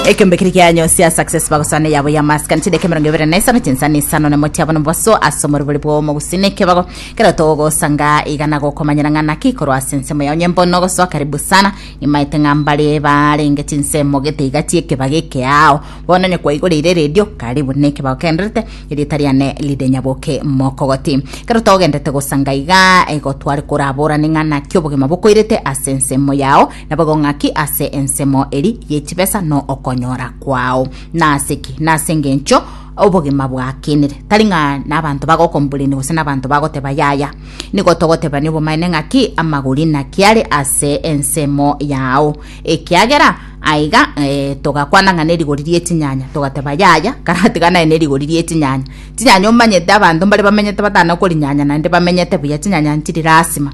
ekembe kiri kianyo sia success bagosana yabo ya maskani chideka emerongo ebere na isano chinsani isano na motiabo na mobaso ase omoribori bwa omogusina ekebago kero togosanga igana gokomanyera ng'a naki ikorwa ase ensemo yao nyembo nogosoa karibu sana imaete ng'a mbare barenge chinsemo gete iga chiekebago ekeao bono onye kwaigoreire radio karibu na ekebago kenderete erieta riane lide nyaboke mokogoti kero togendete gosanga iga igo tware koraborane ng'a naki obogima bokoirete ase ensemo yao Naboigo ng'aki ase ensemo eri ye chibesa no okonyora kwao. Nase ki? Nase engencho obogima bwakenire. Tari ng'a nabanto bagokomburenia gose nabanto bagoteba yaya. Nigo togotebania obomaene ng'aki amagori naki are ase ensemo yao. Ekiagera aiga eh, togakwana ng'a nerigori rie chinyanya togateba yaya karatiga naye nerigori rie chinyanya. Chinyanya omanyete abanto mbare bamenyete batana korinyanya naende bamenyete buya chinyanya nchiri rasima.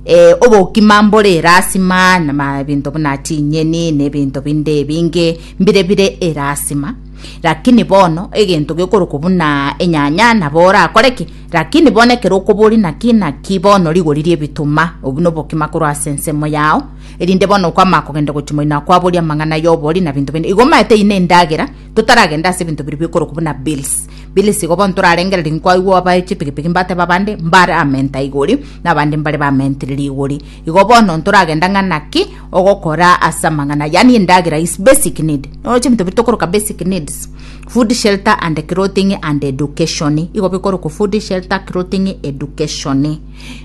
eh, obokima mbore erasima na ebinto buna chinyeni na ebinto binde ebinge mbire bire erasima lakini bono egento gekorokwa buna enyanya nabo orakore ki lakini bono ekero okobori naki naki bono rigori rie ebituma obu nobokima korwa ase ensemo yao erinde bono okwama kogenda gochia moino akwaboria amang'ana yobori na binto binde igo omaete ine endagera Totaragende ase ebinto biria bikorokwa buna bills. Bills igo bono torarengererie nkwaigwa aba chipikipiki mbateba abande mbare amenta igori na abande mbare bamentiriri igori. Igo bono ntoragenda ng'a naki ogokora ase amang'ana yaani endagera is basic need. Nonya chibinto biria tokoroka basic needs, food, shelter and clothing and education. Igo bikorokwa food, shelter, clothing, education.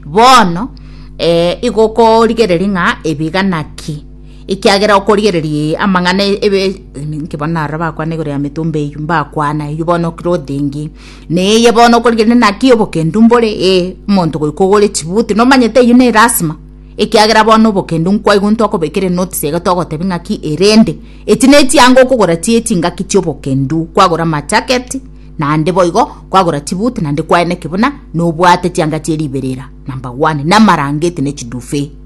Bono eh igo okorigereria ng'a ebi iga naki. Ekiagera okorigereria ee amang'ana ebe ninki bono narora bakwana igoro ya metomba eyio mbakwana eyio bono okire othingi neye bono okorigereria naki obokendu mbore ee omonto goika ogore chibuti nomanyete eyio ne elasima ekiagera bono obokendu nkwaigu ntokobekera enotice iga togotebi ng'aki erende echi ne echianga okogora chie chingaki chiobokendu kwagora amachaketi naende boigo kwagora chibuti naende kwaeneki buna nobwate chianga chie riberera number one na amarangeti ne chiduve.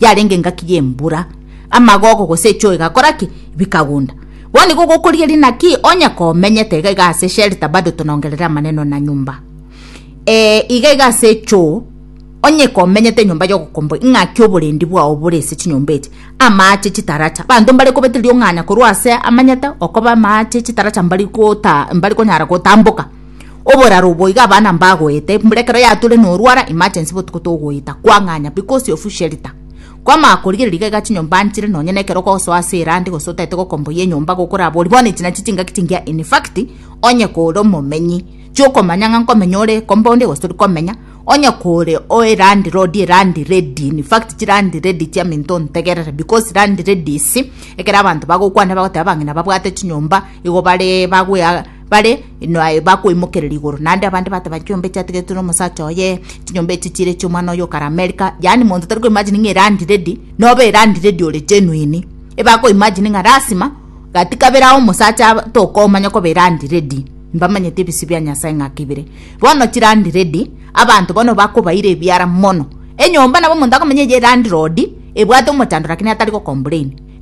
yarenge engaki y'embura, amagogo gose echoo egakora ki? Bikagunda. Bono nigo gokorigeria naki onye komenyete iga iga ase shelter bado tonongerere amaneno na nyumba. Eh, iga iga ase echoo, onye komenyete enyomba y'ogokomboa ing'aki oborendi bwao bore ase chinyomba echi, amaache chitaracha. Abanto mbare kobete riong'ana korwa ase amanyete okoba amaache chitaracha mbari gota mbari konyara gotamboka. oboraro obo iga abana mbagoete mbuna ekero yature norwara emergency botuko togoeta kwang'anya because of shelter kwamanya korigereria iga iga chinyomba nchire nonye na ekero okosoa ase erandi gose otaete gokomboyia enyomba gokorabori bono echi nachi chingaki chingiya in fact onye kore omomenyi chiokomanya ng'a nkomenya ore compound gose tori komenya onye kore o erandi lord erandi ready in fact chirandi ready chiaminto ontegerere because land ladies ekero abanto bagokwana bagoteba abang'ina babwate chinyomba igo bare bagoea. Bare inwe bakoimokereria igoro, naende abande bateba, Chinyomba echi ategetetwe nomosacha oye, chinyomba echi chire chi'omwana oye okare Amerika. Yaani monto tari koimagine ng'a elandlady noba elandlady ore genuine. Ebakoimagine ng'a lasima gati kabere ao omosacha aba tokomanya koba elandlady. Mbamanyete ebisio bia Nyasae ng'ake bire. Bono chilandlady abanto bono bakobaira ebiara mono. Enyomba nabo omonto akomenya eye elandlord ebwate omochandoro lakini atari gocomplain.